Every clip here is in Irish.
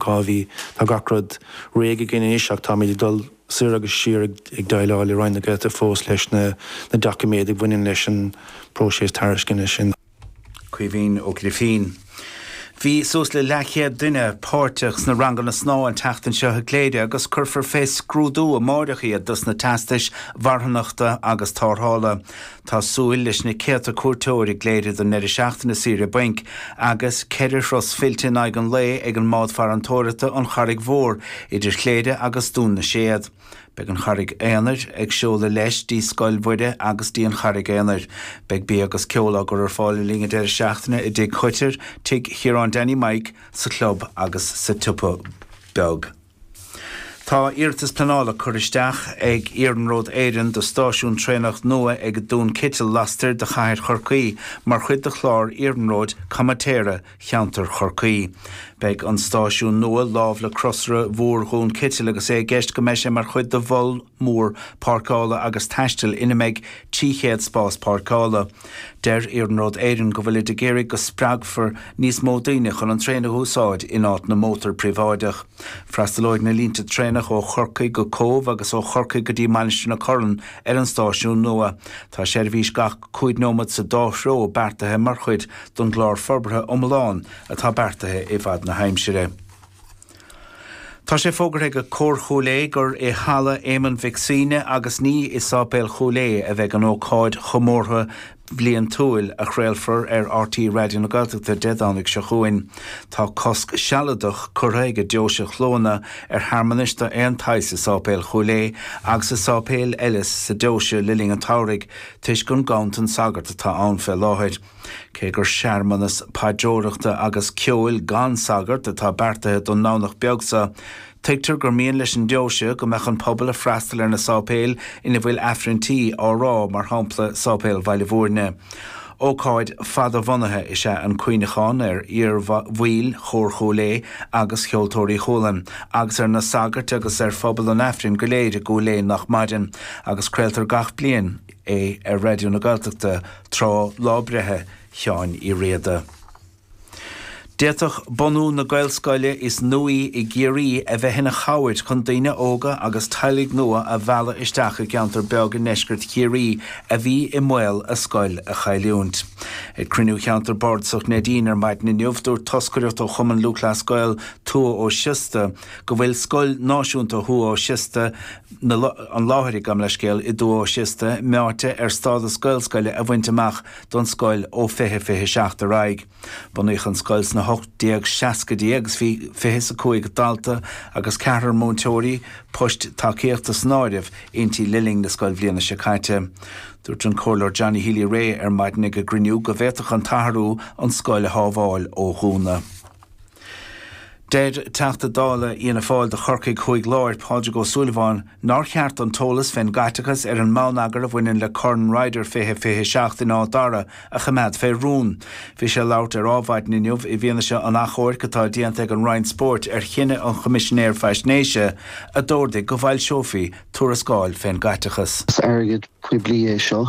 Cá bhith, tá gach rud réidh againn anois ach táimid ag dul soir agus siar ag déileáil le Roinn na Gaeltachta fós leis na doiciméid a bhaineann leis an bpróiséas tairisceana sin. Caoimhín Ó Grifín. Bhí suas le leathchéad duine páirteach sna ranganna snámh an tseachtain seo i gCléire agus cuirfear fé scrúdú amáireach iad dos na teastais mharthanachta agus tárrthála. Tá súil leis na céadta cuairteoir i gCléire don ndeireadh seachtaine saoire bainc agus ceithre thuras fillte in aghaidh an lae ag an mbád farantóireachta An Charraig Mhór idir Chléire agus Dún na Séad. Beidh an Charraig Aonair ag seoladh leis dtí Scoil Mhuire agus dtí an Charraig Aonair. Beidh bia agus ceol á gcur ar fáil le linn an deireadh seachtaine i dTigh Choitir, Tigh Chiaráin Danny Mike, sa Chlub agus sa tSiopa Beag. Tá iarratas pleanála curtha isteach ag Iarnród Éireann do stáisiún traenach nua ag Dún Citil lastoir de Chathair Chorcaí mar chuid de chlár iarnróid comaitéara cheantar Chorcaí. Beidh an stáisiún nua lámh le crosaire mhór Dhún Citil agus é i gceist go mbeidh sé mar chuid de mhol mór páirceála agus taistil ina mbeidh 300 spás páirceála. Deir Iarnród Éireann go bhfuilid ag iarraidh go spreagfar níos mó daoine chun an traein a úsáid in áit na mótar príobháideach. Freastalóidh na línte traenach ó Chorcaigh go Cóbh agus ó Chorcaigh go dtí Mainistir na Corann ar an stáisiún nua. Tá seirbhís gach cúig nóiméad sa dá threo beartaithe mar chuid don gclár forbartha iomlán atá beartaithe i bhfad na haimsire. Tá sé fógartha ag Cór Chúil Aodha gur i Halla Éamonn Mhic Suibhne agus ní i Sáipéal Chúil Aodha a bheidh an ócáid chomórtha bhliantúil a chraolfar ar RTÉ Raidió na Gaeltachta Dé Domhnaigh seo chugainn. Tá cosc sealadach curtha ag Deoise Chluana ar shearmanais d'aon tsaghas i Sáipéal Chúil Aodha agus i sáipéil eile sa Deoise le linn an tSamhraidh toisc an ganntan sagart atá ann fé láthair. Cé gur searmanas paidreoireachta agus ceoil gan sagart atá beartaithe don nDomhnach beag seo, tuigtear gur mian leis an deoise go mbeadh an pobal ag freastal ar na sáipéil ina bhfuil aifrinntí á rá, mar shampla Sáipéal Bhaile Mhúirne. Ócáid fada bhunaithe is ea an cuimhneachán ar iarbhaill Chór Chúil Aodha agus Cheoltóirí Chualann, agus ar na sagairt agus ar phobal an aifrinn go léir i gCúil Aodha nach maireann, agus craoltar gach bliain é ar Raidió na Gaeltachta tráth lá breithe Sheáin Uí Riada. D'fhéadfadh bunú na Gaelscoile is nuaí i gCiarraí a bheith ina chabhair chun daoine óga agus teaghlaigh nua a mhealladh isteach i gceantar beag i ndeisceart Chiarraí a bhí i mbaol a scoil a chailliúint. Ag cruinniú Cheantar Bardasach Neidín ar maidin inniu, dúirt toscaireacht ó Chumann Lúthchleas Gael, Tuath Ó Siosta, go bhfuil Scoil Náisiúnta Thuath Ó Siosta, an Láithrigh Ghaelscoil i dTuath Ó Siosta meáite ar stádas Gaelscoile a bhaint amach don scoil ó 2027 ar aghaidh. Bunaíodh an scoil sna 1860idí agus bhí 25 dalta agus ceathrar múinteoirí, poist tacaíochta san áireamh, inti le linn na scoilbhliana seo caite. Dúirt an Comhairleoir Johnny Healy-Rae ar maidin ag an gcruinniú go bhféadfadh an t-athrú an scoil a shábháil ó dhúnadh. Deir Teachta Dála Fhianna Fáil do Chorcaigh Thuaidh-Lár, Pádraig Ó Súilleabháin, nár cheart an t-eolas fén gcaiteachas ar an mbonneagar a bhaineann le Corn Ryder 2027 in Áth Dara a choimeád fé rún. Bhí sé ag labhairt ar Adhmhaidin inniu i bhfianaise an achomhairc atá déanta ag an Roinn Spóirt ar chinneadh an Choimisinéir Faisnéise a d'ordaigh go bhfoilseofaí tuarascáil fén gcaiteachas. Is airgead poiblí é seo.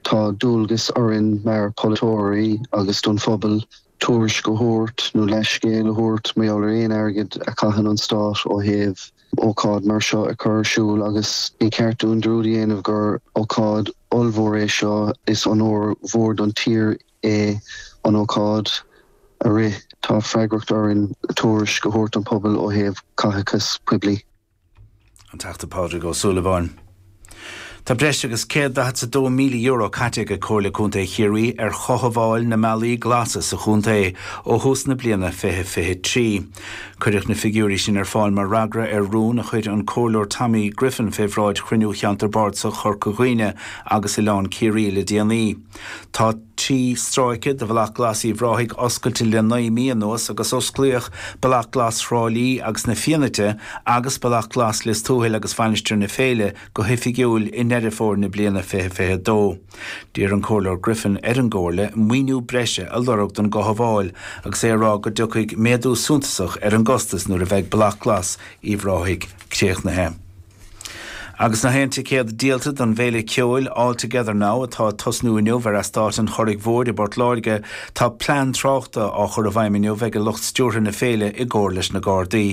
Tá dualgas orainn mar pholaiteoirí agus don phobal tuairisc a thabhairt nó leithscéal a thabhairt mar gheall ar aon airgead a chaitheann an Stát ó thaobh ócáid mar seo a chur ar siúl agus ní ceart dúinn dearúd a dhéanamh gur ócáid ollmhór é seo, is onóir mhór don tír é an ócáid a rith. Tá freagracht orainn tuairisc a thabhairt don phobal ó thaobh caiteachas poiblí. An Teachta Pádraig Ó Súilleabháin. Tá breis agus €142,000 caite ag Comhairle Contae Chiarraí ar chothabháil na mbealaí glasa sa chontae ó thús na bliana 2023. Cuireadh na figiúirí sin ar fáil mar fhreagra ar rún a chuir an Comhairleoir Tommy Griffin fé bhráid Chruinniú Cheantar Bardasach Chorca Dhuibhne agus Oileán Chiarraí le déanaí. Tá trí stráice de Bhealach Glas Uíbh Ráthaigh oscailte le naoi mí anuas agus osclaíodh Bealach Glas Thrá Lí agus na Fianaite agus Bealach Glas Lios Tuathail agus Mhainistir na Féile go hoifigiúil i nDeireadh Fómhair na bliana 2022. D'iarr an Comhairleoir Griffin ar an gComhairle maoiniú breise a lorg don gcothabháil agus é ag rá go dtiocfaidh méadú suntasach ar an gcostas nuair a bheidh Bealach Glas Uíbh Ráthaigh críochnaithe. Agus nach aon ticéad díolta don bhféile ceoil All Together Now atá ag tosnú inniu ar Eastát an Churraigh Mhóir i bPort Láirge, tá plean tráchta á chur i bhfeidhm inniu ag lucht stiúrtha na féile i gcomhar leis na Gardaí.